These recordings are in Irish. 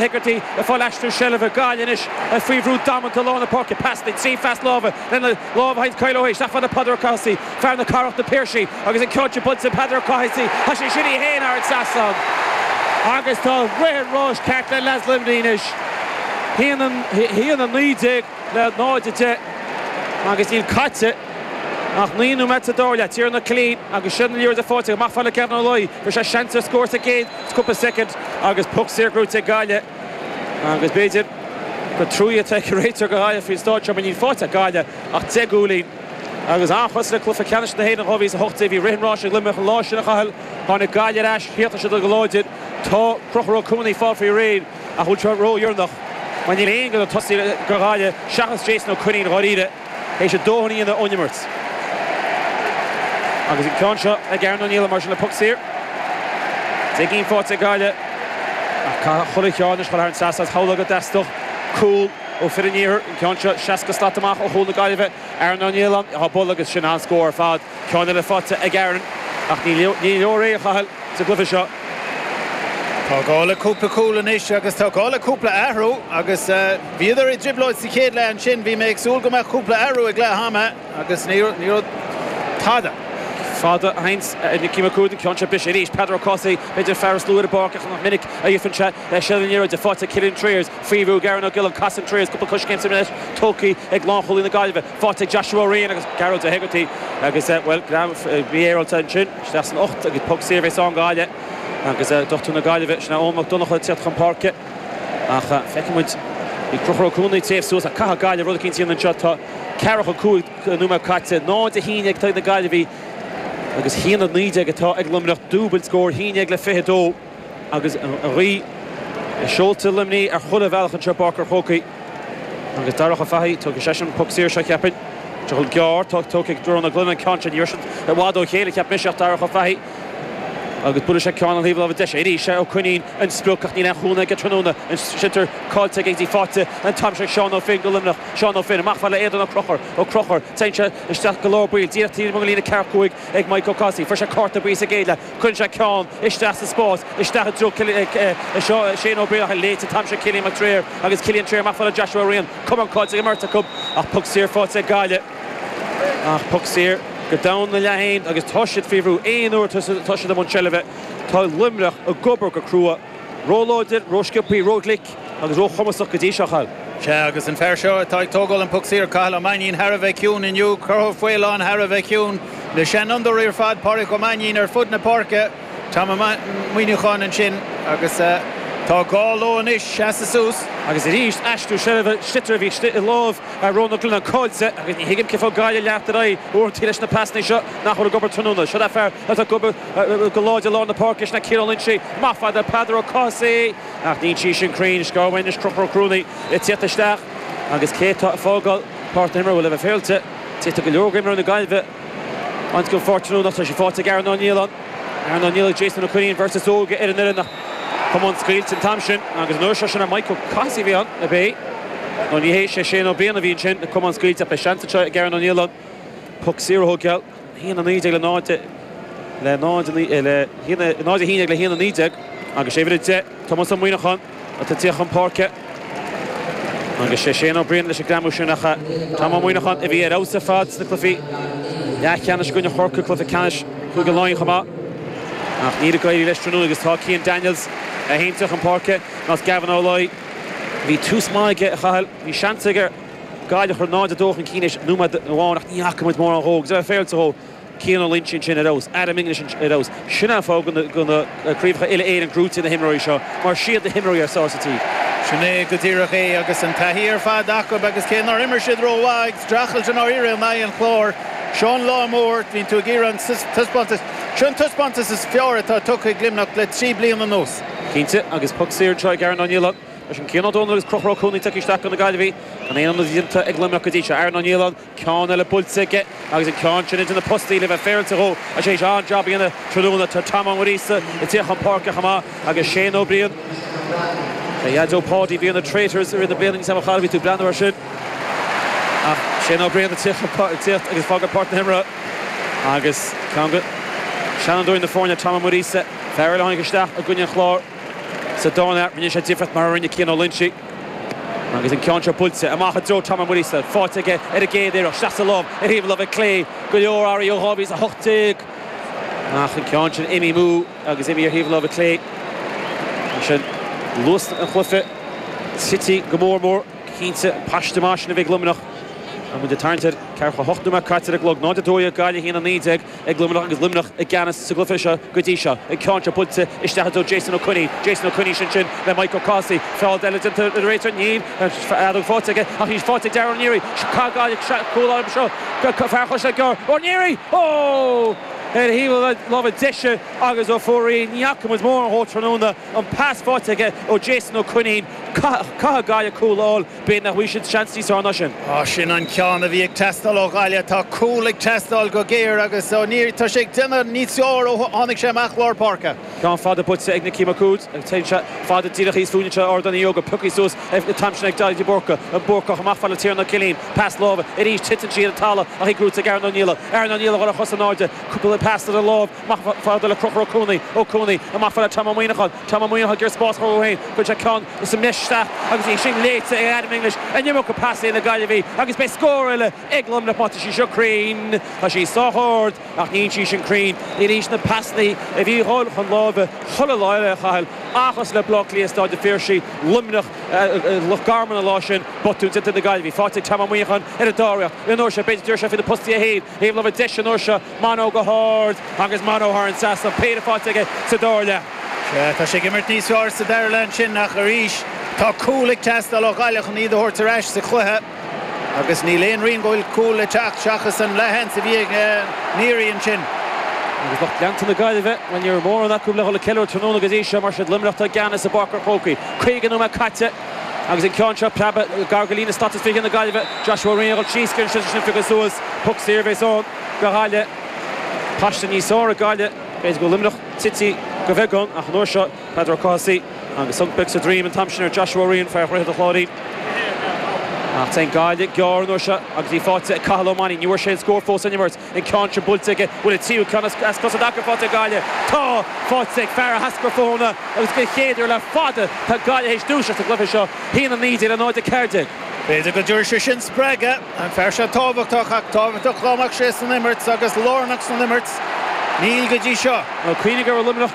Hegarty ag fáil aistriú seilbhe ag Gaillimh anois ach faoi bhrú damanta lár na páirce. Pas den tslí phas láimhe lena lámh a sheinnt Kyle O'Hea isteach fhad le Peadar Ó Cathasaigh, fear na Cathrach, Na Piarsaigh agus an ceann sin bainte ag Peadar Ó Cathasaigh. Chaith sé sin é fhéin thar an trasnán agus tá rith an ráis ceart le leads Luimnigh anois. A haon 19 le 0 10 agus níl caite ach naoi nóiméad sa dara leath. Tiernan Ó Cuilín agus Séadna Ó Laoire de pháirt acu. Amach fhad le Gavin Ó Laoi. Fuair sé seans ar scór sa gcéad. cúpla soicind agus puc saor gnóite ag Gaillimh agus b'fhéidir gur trua atá ag an réiteoir do Ghaillimh faoin stáitse mar níl faighte ag Gaillimh ach deich gcúilín. Agus an-chosúil le cluiche ceannais na hÉireann 2018, bhí rith an ráis ag Luimneach an lá sin, a Chathail. Tháinig Gaillimh ar ais thiar sa deireadh go láidir, tá Conchúr Ó Cuana ag fáil faoi réir ach an bhfuil seo ródheireanach mar níl aon duine sna tosaithe do Ghaillimh seachas Jason Ó Coinín dháiríre. Théis a dhóthain a dhéanamh ón imirt agus an ceann seo ag Aaron Ó Nialláin mar sin le puc saor. Deich gcinn faighte ag Gaillimh ach caithfidh chuile cheann anois dhul thar an trasnán. Is amhlaidh go dteastódh cúl ó fhir an iarthair. An ceann seo seasca slat amach ó chúl na Gaillimhe. Aaron Ó Nialláin á bhualadh agus sin an-scór ar fad. Ceann eile faighte ag Aaron ach ní leor é a Chathail sa gcluiche seo. Tá gá le cúpla cúl anois agus tá gá le cúpla athrú agus bhíodar i dtrioblóid sa chéad leath ansin. Bhí mé ag súil go mbeadh cúpla athrú ag leath ama agus ní raibh tada. Fada a sheinnt ag Nicky Mac Uaid, an ceann seo briste arís. Peadar Ó Cathasaigh, b'fhéidir an fear is lú ar an bpáirc ach nach minic a fhaigheann sé seilbh na liathróide. Faighte ag Cillian Trayers, faoi bhrú ag Aaron Ó Giolláin, casann Trayers cúpla coiscéim sa mbreis, tugtha ag lánchúlaí na Gaillimhe. faighte ag Joshua Ó Riain agus Gearóid Ó hEagartaigh agus bhuel greadadh mhífhéaráilte ansin isteach san ucht agus poc saor a bheas ann do Ghaillimh agus dochtúir na Gaillimhe sin é Eoin Mac Donnacha ag teacht chun páirce ach feiceann muid bhí Conchúr Ó Cuanaigh ag téamh suas ach caithfidh Gaillimh rud eicínt a dhéanamh anseo tá ceathracha a cúig nóiméad caite náid a haon déag ag na Gaillimhigh agus haon a naoi déag atá ag Luimneach dúbailt scóir haon déag le fiche dó. Agus an ghaoth i seolta Luimnigh ar chuile bhealach anseo i bPáirc an Chrócaigh agus Darach Ó Fathaigh tógfaidh seisean an poc saor seo cheapfainn. Tadhall gearr tógtha ag Diarmaid Ó Broin an ceann sin. Ní raibh siad i bhfad ó chéile cheap mise ach Darach Ó Fathaigh agus buailfidh sé ceann ar thaobh láimhe deise. Arís Ó Coinín an sprioc ach níl aon chúnamh aige tráthnóna. An sliotar caillte aige agus í faighte an t-am seo ag Seán Ó Finn go Luimneach. Seán Ó Finn, amach fhad le Aodán Ó Conchúir. Ó Conchúir, téann sé isteach go lár báire díreach taobh amuigh den líne ceathracha cúig ag Maidhc Ó Cathasaigh. Fuair sé cárta buí sa gcéad leath. Cuireann sé ceann isteach sa spás isteach i dtreo Shane Ó Beaglaoich, léite an t-am seo ag Killian Mac Tréinir agus Killian Trayers amach fhad le Joshua Ryan. Cuma an chait ar an mbeirt acu ach poc saor faighte ag Gaillimh. Ach poc saor go domhain ina leath féin agus tá siad faoi bhrú. Aon uair atá siad i mbun seilbhe tá Luimneach ag obair go crua. Róláidir, rósciopthaí, róghlic agus róchumasach go dtí seo, a Chathail. Sea, agus an fear seo atá ag tógáil an puc saor, Cathal Ó Mainnín, thar a bheith ciúin inniu. Crochúr Ó Faoláin thar a bheith ciúin. Na seanfhondúirí ar fad, Pádraig Ó Mainnín ar fud na páirce. Tom Ó Muineacháin ansin agus tá gá leo anois seasamh suas. Agus arís, aistriú seilbhe, sliotar a bhí i lámh Rónán Ó Cuilleanáin caillte agus ní thuigim cén fáth go gcaithfear leanacht ar aghaidh uaireanta leis na pasanna seo nach bhfuil ag obair tráthnóna. Seo é an fear atá ag obair. go láidir lár na páirce sin ag Cian Ó Loinsigh. Maith fada ag Peadar Ó Cathasaigh ach níl sí sin cruinn. Scór amháin anois Crochúr Ó Cuanaigh le tiacht isteach agus cé atá ag fágáil páirc na himeartha? Bhuel le bheith féaráilte d'fhéadfaí go leor de imreoirí na Gaillimhe a bhaint dhó tráthnóna. Tá sé faighte ag Aaron Ó Nialláin. Aaron Ó Nialláin agus Jason Ó Coinín beirt is óige ar an fhoireann ach camán scaoilte an t-am sin agus an uair seo sin ar Mike Ó Cathasaigh a bhí ann ab é nó ní hé sé Shane Ó Briain a bhí ansin an camán scaoilte ach beidh seans anseo ag Aaron Ó Nialláin puc saor a thógáil. haon a naoi déag le le 0 a haon déag le haon a naoi déag agus sé uimhir a deich Tomás Ó Muineacháin atá ag tíocht chun páirce agus sé Shane Ó Briain leis an greamú sin ach Tom Ó Muineacháin a bhí ar fheabhas ar fad sna cluifí leathcheannais i gcoinne Chorcaí cluiche ceannais Chúige Laighean chomh maith ach níl ag éirí leis tráthnóna agus tá Cian Daniels é féin ag tíocht chun páirce agus Gavin Ó Laoi bhí tús maith aige a Chathail bhí seans aige Gaillimh a chur 0-2 chun cinn tar éis nóiméad amháin ach ní fhaca muid mórán dhó. Agus le bheith féaráilte dhó Cian Ó Loinsigh ansin ar fheabhas. Adam English ansin ar fheabhas. Sin an fáth go bhfuil na craobhacha uile Éireann gnóite ag na himreoirí seo mar siad na himreoirí is fearr sa tír. Sin é go díreach é agus an taithí ar fad acu agus cé nár imir siad rómhaith ag streachailt i ndáiríre in aghaidh an Chláir, seo an lá mór a bhíonn tú ag iarraidh an taispeántas, seo an taispeántas is fearr atá tugtha ag Luimneach le trí bliana anuas. Cinnte agus poc saor anseo ag Aaron Ó Nialláin. Leis an Cian Ó Dónaill agus Crochúr Ó Cuanaigh tagtha isteach do na Gaillimhigh gan aon ionad déanta ag Luimneach go dtí seo. Aaron Ó Nialláin, ceann eile buailte aige agus an ceann sin idir na postaí le bheith féaráilte dhó, agus é tar éis an-jab a dhéanamh tráthnóna. Tá Tom Ó Muiríosa ag teacht chun páirce chomh maith agus Shane Ó Briain. B'é a dhaideo Páidí a bhí ar na Traitors i rith na bliana níl a fhios agam an raibh tú ag breathnú air sin, ach Shane Ó Briain ag teacht ag fágáil páirc na himeartha agus ceann de sheanfhondúirí na foirne, Tom Ó Muiríosa, fear eile a tháinig isteach i gcoinne an Chláir. Sa dara leath rinne sé difríocht mar a rinne Cian Ó Loinsigh agus an ceann seo buailte amach i dtreo Tom Uí Mhuiríosa. Faighte aige ar an gcéad iarracht, sleasa lom ar thaobh láimhe clé go leor earraí ó 2018 ach an ceann sin imithe amú agus imithe ar thaobh láimhe clé. Ansin luas an chluiche tite go mór mór, cinnte paiste maith sin a bhí ag Luimneach. Muid ag tarraingt ar ceathracha hocht nóiméad caite ar an gclog, 0-12 Gaillimh 1-19. ag Luimneach agus Luimneach i gceannas sa gcluiche seo go dtí seo. An ceann seo buailte isteach do Jason Ó Coinnín. Jason Ó Coinnín sin sin le Mike O'Casey. Feall eile déanta a deir an réiteoir, níl an fheadóg faighte aige ach í faighte ag Darragh Ó Neary. Caithfidh Gaillimh cúl a fháil as seo fear Chaisleán Gearr. Ó Neary! Ó! Ar thaobh na láimhe deise agus ar fóraoil ní fhaca muid mórán dhó tráthnóna. An pas faighte aige ó Jason Ó Coinnín. Caithfidh, caithfidh Gaillimh cúl a fháil. B'fhéidir nach bhfaighidh siad seans níos fearr ná sin. Ah sin an ceann a bhí ag teastáil ó Ghaillimh. Tá cúl ag teastáil go géar agus Ó Neary tá sé ag déanamh níos fearr ó tháinig sé amach lár páirce. Ceann fada buailte ag Nicky Mac Uaid. Téann sé fada díreach thíos fúinne anseo Ardán Uí Ógáin. Pioctha suas an t-am sin ag Daithí de Búrca. An Búrcach amach chomh fada le Tiernan Ó Cillín. Pas láimhe arís titeann sí ar an talamh ach í gnóite ag Aaron Ó Niallaigh. Aaron Ó Niallaigh ar a chosa in airde. Cúpla pas ar an láimh. Amach chomh fada le Conchúr Ó Cuanaigh, Ó Cuanaigh amach chomh fada le Tom Ó Muíneacháin, Tom Ó Muíneacháin ag iarraidh spás dhó féin, chuir sé ceann sa mbreis isteach agus í sin léite ag Adam English an iomarca pasanna ag na Gaillimhigh agus beidh scór eile ag Luimneach má tá sí seo cruinn. Tá sí sách ard ach níl sí sin cruinn. Anois na pasanna a bhí ag dhul chun láimhe chuile lá eile, a Chathail, seachas le Bleá Cliath i Staid an Phiarsaigh, Luimneach, Loch Garman an lá sin, botún déanta ag na Gaillimhigh. Faighte ag Tom Ó Muíneacháin ar an dara hiarracht. An uair seo, b'fhéidir, go dtabharfaidh sé faoi na postaí é féin Taobh na láimhe deise an uair seo, Mano go hard agus Mano thar an trasnán, péire faighte aige sa dara leath. Tá sé ag imirt níos fearr sa dara leath ansin ach arís tá cúl ag teastáil ó Ghaillimh chun iad a thabhairt ar ais sa chluiche agus níl aon rian go bhfuil cúl le teacht seachas an leathsheans a bhí ag Neary ansin. Agus lucht leanta na Gaillimhe, bhuel ní raibh mórán acu le dhul ag ceiliúradh tráthnóna go dtí seo mar is iad Luimneach atá i gceannas i bPáirc an Chrócaigh. Caoga nóiméad caite. Agus an ceann seo preabtha gar go líne stait is fiche na Gaillimhe, Joshua Ryan, ag dhul síos go dtí an sliotar sin a phiocadh suas, puc saor a bhéas ann do Ghaillimh. Paiste níos saoire Gaillimh, b'fhéidir go bhfuil Luimneach tite de bheagán ach an uair seo Peadar Ó Cathasaigh agus thug beag sa droim an t-am sin ar Joshua Ryan, fear Dhroichead an Chláirín. Ach téann Gaillimh gearr an uair seo agus í faighte ag Cathal Ó Mainín. Ní bhfuair sé an scór fós san imirt. an ceann sin buailte aige, bhuel an tríú ceann as cosa i dtaca faighte ag Gaillimh. Tá sé faighte ag fear Áth Eascrach Fothannach agus den chéad uair le fada tá Gaillimh théis dúiseacht sa gcluiche seo, a haon 19 le 0 a 14. B'fhéidir go dtabharfaidh sé sin spreagadh an fear seo tábhachtach ach tábhachtach go mbeadh sé san imirt agus lárnach san imirt, níl go dtí seo. Cuimhnigh go raibh Luimneach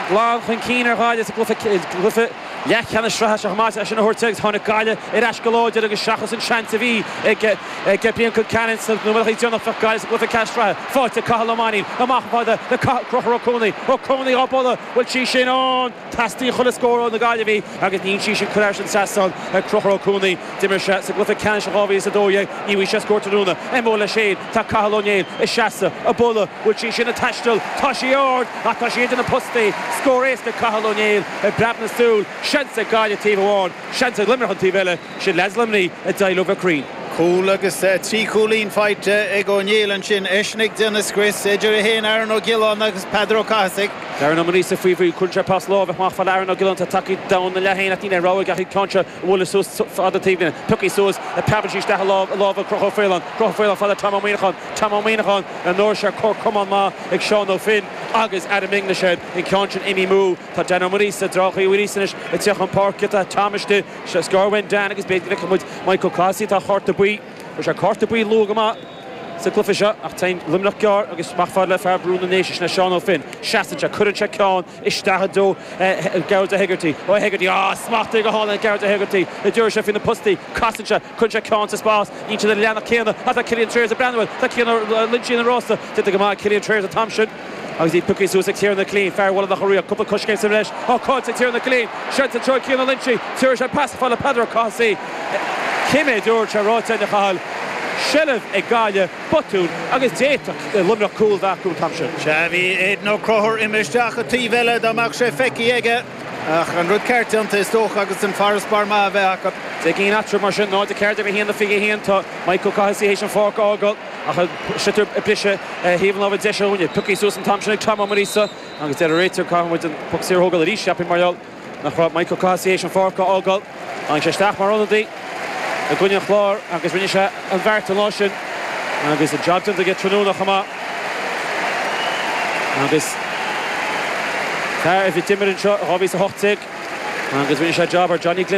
glan chun cinn ar Ghaillimh sa gcluiche. leathcheannais sraithe chomh maith sin a thabhairt agus tháinig Gaillimh ar ais go láidir agus seachas an seans a bhí ag Brian Concannon sna nóimeataí déanacha bheadh Gaillimh sa gcluiche ceannais sraithe. Faighte ag Cathal Ó Mainín amach chomh fada le Conchúr Ó Cuanaigh. Ó Cuanaigh á bualadh, an bhfuil sí sin ann, teastaíonn chuile scór ó na Gaillimhigh agus imíonn sí sin cruinn thar an trasnán ag Conchúr Ó Cuanaigh. D'imir sé sa gcluiche ceannais in 2012 ní bhfuair sé scór tráthnóna. MO le Shane. Tá Cathal Ó Néill ag seasamh, ag bualadh, bhfuil sí sin ag taisteal, tá sí ard ach tá sí idir na postaí, scór éasca ag Cathal Ó Néill i bpreab na súl, seans ag Gaillimh taobh amháin, seans ag Luimneach an taobh eile, sin leaids Luimnigh a d'éirigh leo bheith cruinn. Cúl agus trí chúilín faighte ag Ó Néill ansin, eisean ag déanamh scrios idir é héin, Aaron Ó Giolláin agus Peadar Ó Cathasaigh. Darren Ó Muiríosa faoi bhrú, cuireann sé pas láimhe amach fhad le Aaron Ó Giolláin, tá tagthaí domhain ina leath féin ach níl aon rogha ach an ceann seo a bhualadh suas fad an taobhlíne. Piocthaí suas, preabann sí isteach i lámh i lámha Chonchúir Ó Faoláin. Conchúr Ó Faoláin fhad le Tom Ó Muineacháin. Tom Ó Muineacháin ar ndóigh sé cor cuma maith ag Seán Ó Finn agus Adam English air an ceann sin imithe amú. Tá Dan Ó Muiríosa dtráthchaí arís anois ag teacht chun páirce. Tá Tom istigh, is gearr uainn Dan agus b'fhéidir go bhfeicfidh muid Michael Cathasaigh atá ar chárta buí. Fuair sé cárta buí luath go maith. sa cluiche seo ach téann Luimneach gearr agus amach fhad le fear Bhrú na nDéise, sin é Seán Ó Finn. Seasann sé, cuireann sé ceann isteach i dtreo Gearóid Ó hEigeartaigh. Ó hEigeartaigh, á, smachtaithe go hálainn ag Gearóid Ó hEigeartaigh an dtabharfaidh sé faoi na postaí. Casann sé, cuireann sé ceann sa spás, níl siad ar an leathnach céanna ach tá Cillian Trayers ag breathnú air, tá Cian Ó Loingsigh ina rása, déanta go maith ag Cillian Trayers an t-am sin. Agus í piocthaí suas ag Tiernan Killeen, fear Bhaile Locha Riach, cúpla coiscéim sa bhreis, á dtógáil ag Tiernan Killeen. Seans i dtreo Cian Ó Loingsigh, tiúrfaidh sé pas fhad le Peadar Ó Cathasaigh. Cé mhéad uair atá sé ráite againn, a Chathail, seilbh ag Gaillimh, botún agus d'fhéadfadh Luimneach cúl bheith acu an t-am sin. Sea, bhí Aidan Ó Conchúir imithe isteach an taobh eile dá mbeadh sé feicthe aige, ach an rud ceart déanta is dócha agus an farasbarr maith a bheith acu. Deich gcinn eatarthu mar sin, 0-14 le 1-21. Tá Mike Ó Cathasaigh théis an pháirc a fhágáil. Ach an sliotar ag briseadh ar thaobh an láimhe deise dhúinne. Piocthaí suas an t-am sin ag Tom Ó Muiríosa agus deir an réiteoir caithfidh muid an poc saor a thógáil arís, cheapfainn, mar gheall nach raibh Michael Cathasaigh théis an pháirc a fhágáil. Tháinig sé isteach mar ionadaí i gcoinne an Chláir agus rinne sé an beart an lá sin agus an jab déanta aige tráthnóna chomh maith. Agus fear a d'imir anseo i 2018 agus rinne sé jab ar Johnny Glynn i.